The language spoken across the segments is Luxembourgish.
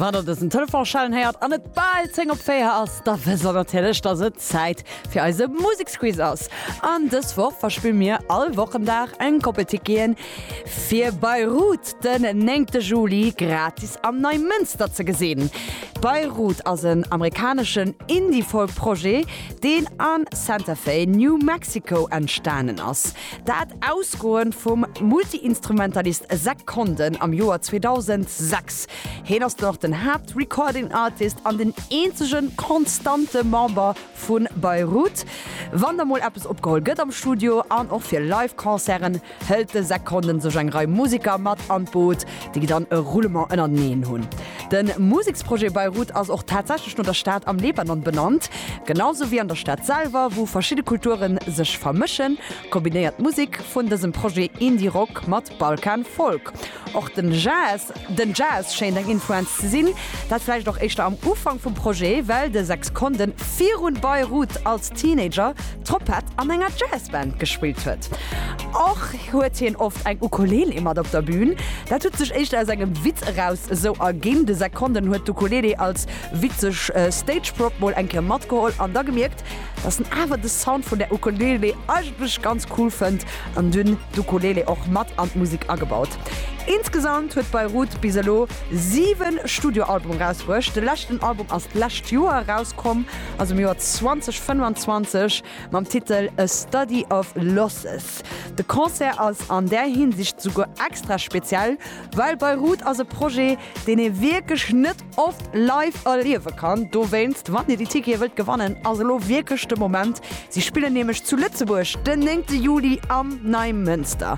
Wann der dësen Telefon schellen héiert an et bal 10 op 4 ass, da wësst der natierlech, dass et Zäit fir eise Museksquiz ass. An dës Woch verspille mir all Wochendag eng Koppel Ticketen, fir Bayreuth den 9 Juli gratis am Neimënster ze gesinn. Bayreuth ass en amerikaneschen Indie-Folk-Projet, deen a Santa Fe, New Mexico, entstanen ass. Dat ausgoend vum Multi-Instrumentalist Zack Condon am Joer 2006. Heen ass den och den Haapt-Recording Artist an den eenzegen konstante Member vu Beirut. Wann da mol eppes opgeholl gëtt am Studio an och fir Live-Concerten hëlt de Zack Condon sech eng Rei Museker mat an d'Boot, déi gi dann e Roulement ënnerteneen hunn. De Museksprojet Beirut ass och tatsächlech no der Stad am Libanon benannt, genau sou wéi an der Stad selwer, wou verschidde Kulture sech vermëschen, kombinéiert d'Musek vun dësem Projet Indie Rock mat Balkan Folk. Och den Jazz, den Jazz schéint eng Influenz ze sinn, dat vläicht och éischter am Ufank vum Projet, well de Sexkondde virun Beirut als Teenager Troppett an enger Jazzband gespillt huet. Och huet hien oft eng Ukulele mat op der Bühn. Dat huet sech éischter aus engem Witz eraus esou erginn. De Zach Condon huet d'Ukulele als witzeg Stageprop mol eng Kéier matgeholl an da gemierkt, dass en awer de Sound vun der Ukulele eigentlech ganz cool fënnt an dunn d'Ukulele och mat an d'Musek agebaut. Insgesamt huet Beirut bis elo 7 Studioalbume erausbruecht. De leschten Album ass d'lescht Joer erauskomm, also am Joer 2025. Mam Titel A Study of Losses. De Concert ass an där Hinsicht souguer extra speziell, well Beirut ass e Projet, deen ee wierklech net oft live erliewe kann. Dowéinst, wann Dir déi Tickete wëllt gewannen, ass elo wierklech de Moment. Si spillen nämlech zu Lëtzebuerg den 9 Juli am Neimënster.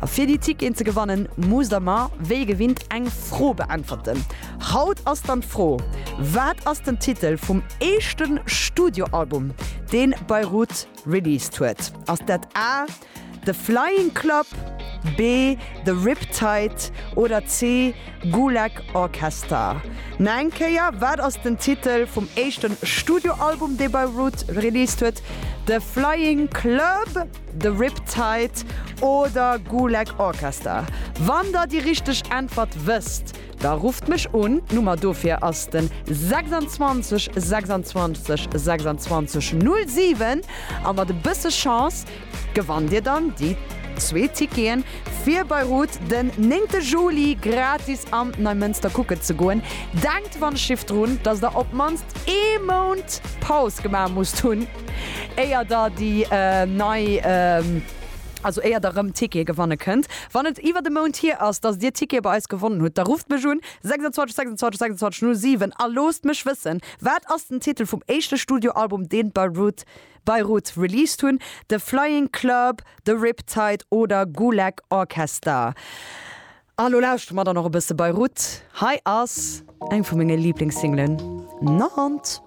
A fir déi Ticketen ze gewannen, musst Der mer wéi gewinnt eng Fro beäntwerten. Haut ass dann d'Fro, Wat ass den Titel vum éischte Studioalbum, dee Beirut released huet? Ass dat A, The Flying Club, B, The Riptide oder C, Gulag Orchestra? Nach eng Kéier, Wat ass den Titel vum éischte Studioalbum, dee Beirut released huet? The Flying Club, The Riptide oder Gulag Orchestra? Wann der déi richteg Äntwert wësst, Da rufft mech un, d'Nummer dofir ass den 26 26 26 07 a mat e bësse Chance gewannt dir dann déi zwee Ticketen fir Beirut den 9 Juli gratis an Neimënster kucken ze goen. Denkt wann ech schifft drun, dass der op mannst ee Mount Paus gemaach musst hunn éier der déi nei. Also éier der rëm Tickete gewanne kënnt, wann et iwwert e Mount hier ass, dass dir Tickete bei eis gewonnen hutt, da rufft mech un, 26 26 26 07, a loosst mech wëssen, wat ass den Titel vum éischte Studioalbum, deen d'Beirut Beirut released hunn, The Flying Club, The Riptide oder Gulag Orchester? A lo lauschtere mer dann och e bësse Beirut. Hei ass eng vu menge Liiblingssinglen, Nantes.